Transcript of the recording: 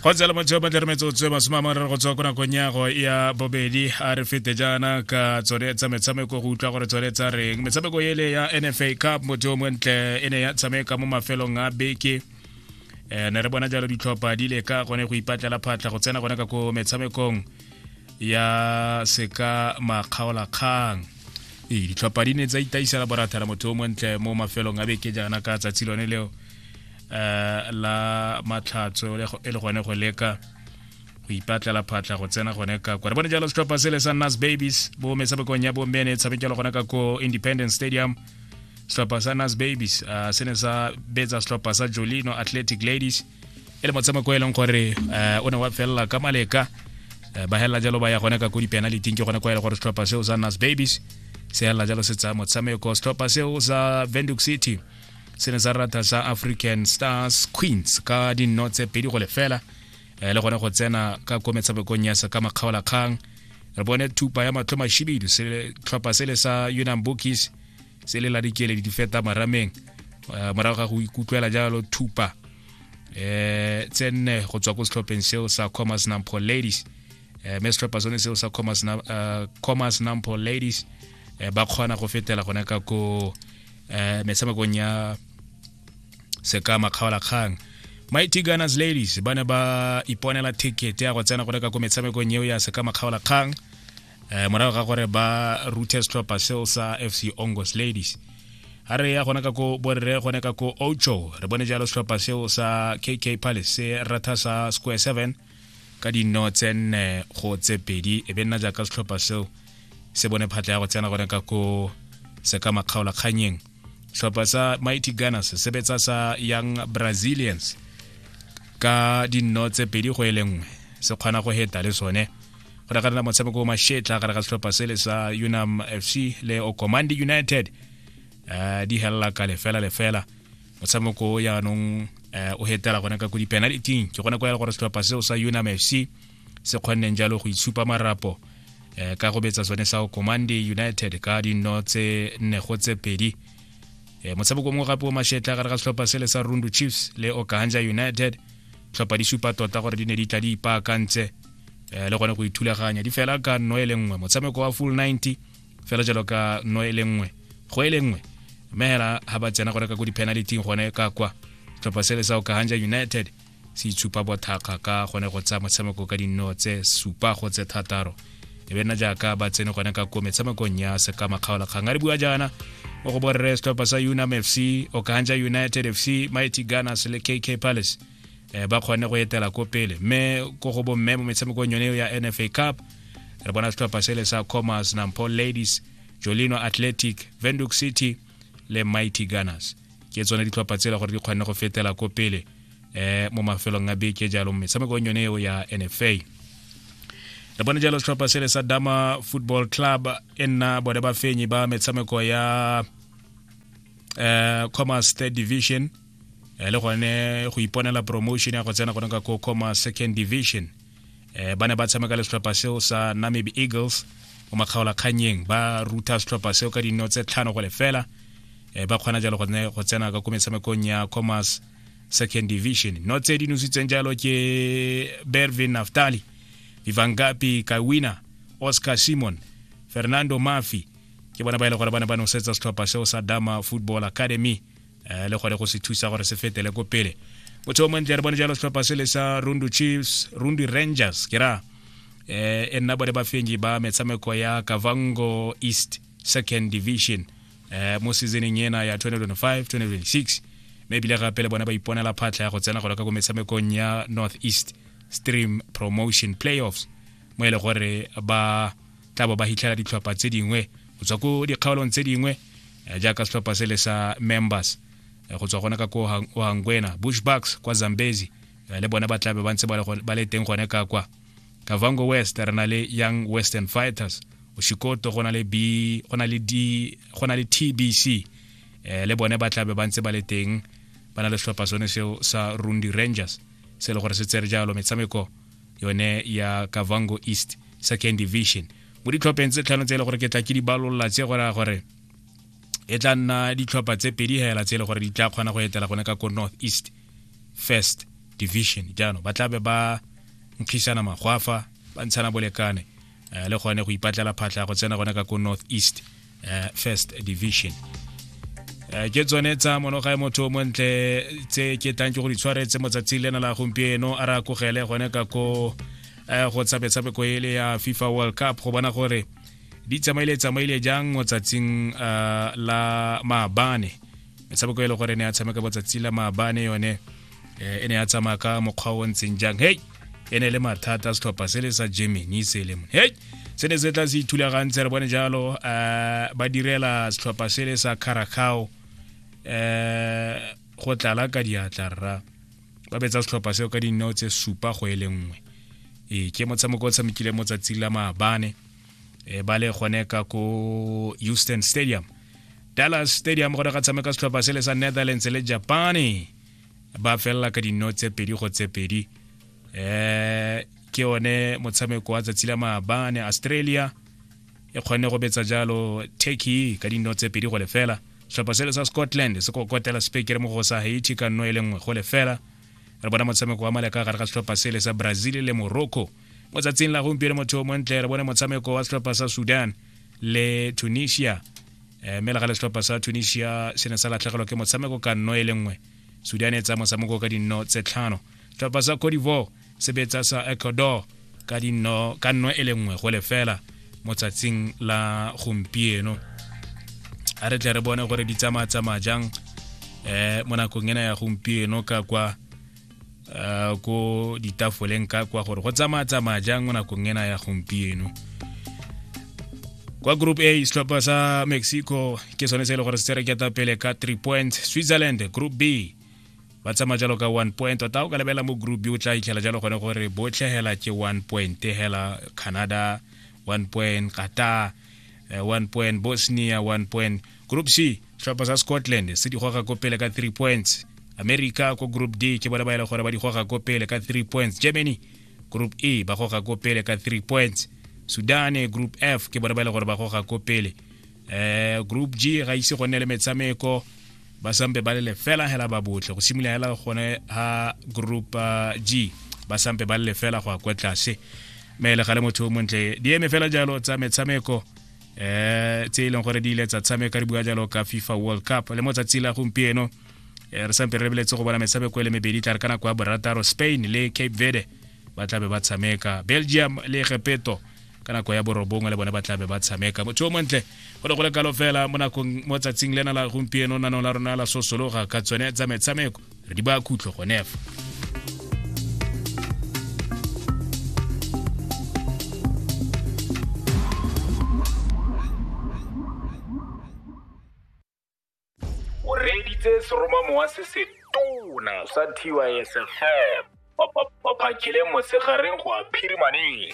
go tsela motho yo batle re metsotso e masome a mararo go tswa ko nakong yago ya bobedi a re fete jaana ka tsone tsa metshameko go utlwa gore tsone tsa reng metshameko ele ya nfa cup motho yo montle e ne ya tshameka mo mafelong a beke um ne re bona jalo ditlhopha di le ka gone go ipatlela phatlha go tsena gone ka ko metshamekong ya seka makgaolakgang ee ditlhopha di ne tsa itaisela borathana motho yo montle mo mafelong a beke jaana ka tsatsi lone leo uh, la matlhatso e le gone go leka go ipatlela phatla go tsena gone ka kwa re bone jalo setlhopha se le sa nas babies bo metshamekong ya bomme ne tshamekelo gone ka ko independence stadium setlhopha sa nas babies uh, se ne sa betsa setlhopha sa jolino athletic ladies e le motshameko e leng gore uh, o ne wa felela ka maleka Eh, ba helela jalo ba ya gone ka ko dipenaliting ke gone kwa ele gore setlhopha seo sa nas babies se helela jalo se tsaya motshameko setlhopha seo sa venduk city se ne sa rata sa african stars queens ka dinno tse pedi go lefela eh, le gone go tsena ka ko metshamekong ya se ka makgaolakgang re bone thupa ya matlho mashibidu tlhopha sele sa unam bookies se le la dikeledi di feta marameng eh, morago ga go ikutlwela jalo thupa eh tse nne go tswa ko setlhopheng seo sa commerce nampo ladies eh me setlhopha sone seo sa commerce na eh, commerce nampo ladies eh, ba kgona go fetela gone ka ko eh metshamekong ya seka makgaolakgang mighty gunners ladies ba ne ba iponela ticket ya go tsena go reka ko metshamekong eo ya seka makgaolakgang eh morago ga gore ba ruthe setlhopha seo sa fc ongos ladies a re ya gona ka ko borre gone ka ko ocho re bone jalo setlhopha seo sa kk palace se ratha sa square seven ka dino tse nne go tse pedi e be nna jaaka setlhopha seo se bone phatla ya go tsena gone ka ko se ka makgaola kganyeng setlhopha sa mighty gunners se sebetsa sa young brazilians ka dino tse pedi go e le nngwe se kgona go heta le sone go reka nna motshameko o mashetla gare ga setlhopha sele sa unam fc le okomandi united uh, di helela ka lefela lefela motshameko o yaanong um o hetela gone ka ko di-penaliting ke gone kwa ya le gore setlhopha seo sa unam f c se kgonneng jalo go itshupa marapo um ka go betsa sone sa commande united ka dino tse nne go tse pedi um motshameko mongwe gape o mashetla gare ga setlhopha sele sa rundu chiefs le okahanja united tlhopha di supa tota gore di ne di tla di ipaakantse um le gone go ithulaganya di fela ka nno e le nngwe motshameko wa full 90 fela jalo ka no e le nngwe go e le nngwe mme hela ha ba tsena gore ka ko di-penalty gone ka kwa tlhopha sele sa okahanja united se itshupa bothakga ka gone go tsaya motshameko ka dinno tse supa go tse thataro e be nna jaaka ba tsene gone ka ko metshamekong ya sekama kgaola kgang a re bua jaana mo go borre setlhopha sa unam fc okahanja united fc mighty gunners le kk palace eh, ba kgone go etela ko pele mme ko go bomme mo metshamekong yone ya nfa cup re bona setlhopha sele sa commerce nampol ladies jolino athletic venduk city le mighty gunners ke tsone ditlhopha tsela gore di kgone go fetela ko pele eh mo mafelong a beke jalo metshamekong yone eo ya nfa re bone jalo setlhopha sele sa dama football club e nna bone bafenyi ba metshameko ya eh commerce third division eh, le gone go iponela promotion ya go tsena gone ka ko coma second division eh, ba ne ba tshameka le setlhopha seo sa namibi eagles mo makgaolakgannyeng ba ruta setlhopha seo ka dino tse tlhano go lefela eh, ba kgona jalo gone go tsena ka ko metshamekong ya commerce second division no tse di nositseng jalo ke bervin naftali vivangapi kawina oscar simon fernando mafi ke bona ba e le gore ba ne ba nosetsa setlhopha seo sa dama football academy um le gore go se thusa gore se fetele ko pele motho o montle re bone jalo setlhopha se le sa rundu chiefs rundu rangers ke ra eh e nna bone bafenyi ba metshameko ya kavango east second division eh mo seasoneng ena ya 2025 2026 mme ebile gape le bone ba iponela phatlha ya go tsena golo ka ko metshamekong ya north east stream promotion playoffs mo e le gore ba tla bo ba hitlhela ditlhopha tse dingwe go tswa ko dikgaolong tse dingwe eh, jaaka setlhopha se le sa members eh, go tswa gona ka ko ohangwena bushbacks kwa zambezi eh, le bone ba tlabe ba ntse ba le teng gone ka kwa kavango west re na le young western fighters oshikoto go na le b go na le d go na le tbc um le bone ba tlabe ba ntse ba le teng ba na le setlhopha sone seo sa rundi rangers se e le gore se tsere jalo metshameko yone ya kavango east second division mo ditlhopheng tse tlhano tse e le gore ke tla ke di balolla tse go raya gore e tla nna ditlhopha tse pedi hela tse e le gore di tla kgona go etela gone ka ko north east first division jaanong ba tla be ba nkgisana magwafa ba ntshana bolekane um le gone go ipatlela phatlha go tsena gone ka ko north east um first division Eh, ke tsone tsa monoga ya motho montle tse ke tlang ke go di tshwaretse motsatsi lena la gompieno a re a kogele gone ka ko eh, go tsabetsabeko ele ya fifa world cup go bona gore di tsamaile tsamaile jang motsatsing eh, la maabane metshameko e le gore ne a tshameka botsatsi la maabane yone eh, e ne ya tsamaya ka mokgwa o ntseng jang hei e ne le mathata setlhopha se le sa germany se le mone hei se ne se tla se ithulagantse re bone jalo um ba direla setlhopha se le sa caracao um eh, go tlala ka diatla rra ba betsa setlhopha seo ka dineo tse supa go e le nngwe ee ke motshameko o tshamekile mo tsatsing la maabane e ba le gone ka ko houston stadium dallas stadium gone ga tshameka setlhopha se le sa netherlands le japane ba felela ka dino tse pedi go tse pedi um ke yone motshameko wa tsatsi la maabane australia e kgone go betsa jalo turkey ka dino tse pedi go lefela setlhopha sele sa scotland se kokotela spekere mo go sa haiti ka nno e le nngwe go lefela re bona motshameko wa maleka gare ga setlhopha sele sa brazil le morocco mo tsatsing la gompieno motho o montle re bone motshameko wa setlhopha sa sudan le tunisia eh, mme le ga le setlhopha sa tunisia se ne sa latlhegelwa ke motshameko ka nno e le nngwe sudan e tsaya motshameko ka dinno tse tlhano setlhopha sa codivor se betsa sa ecuador ka dinno ka nno e le nngwe go lefela mo tsatsing la gompieno a re tle re bone gore di tsamaya tsamaya jang um mo nakong ena ya gompieno ka kwa uh, ko ditafoleng ka kwa gore go tsamaya tsamaya jang mo nakong ena ya gompieno kwa group a setlhopha sa mexico ke sone se e le gore se tsere keta pele ka 3 points switzerland group b ba tsamaya jalo ka one point tota o ka lebelela mo group b o tla itlhela jalo gone gore botlhe hela ke one point hela canada one point qatar eh, one point bosnia one point group c tlhopha sa scotland se di goga ko pele ka 3 points america ko group d ke bone ba e le gore ba di goga ko pele ka 3 points germany group e ba goga ko pele ka 3 points sudan group f ke bone ba e le gore ba goga ko pele eh group g ga ise go nne le metshameko ba sampe ba le fela hela ba botle go simolola hela gone ha group uh, g ba sampe ba le fela go a kwa tlase me le gale motho o montle di eme fela jalo tsa metshameko eh tse e leng gore di ile tsa tshameka re bua jalo ka fifa world cup le mo tsatsi la gompieno eh, re sampe re lebeletse go bona metshameko e le mebedi tla re ka nako ya borataro spain le cape verde ba tlabe ba tshameka belgium le gepeto ka nako ya borobongwe le bone ba tlabe ba tshameka motho o montle go le go le kalo fela mo nakong mo tsatsing lena la gompieno nanong la rona la sosologa ka tsone tsa metshameko re di ba khutlo gone fa o reeditse seromamowa se se tona sa tysfm ba phakile mosegareng go a phirimaneng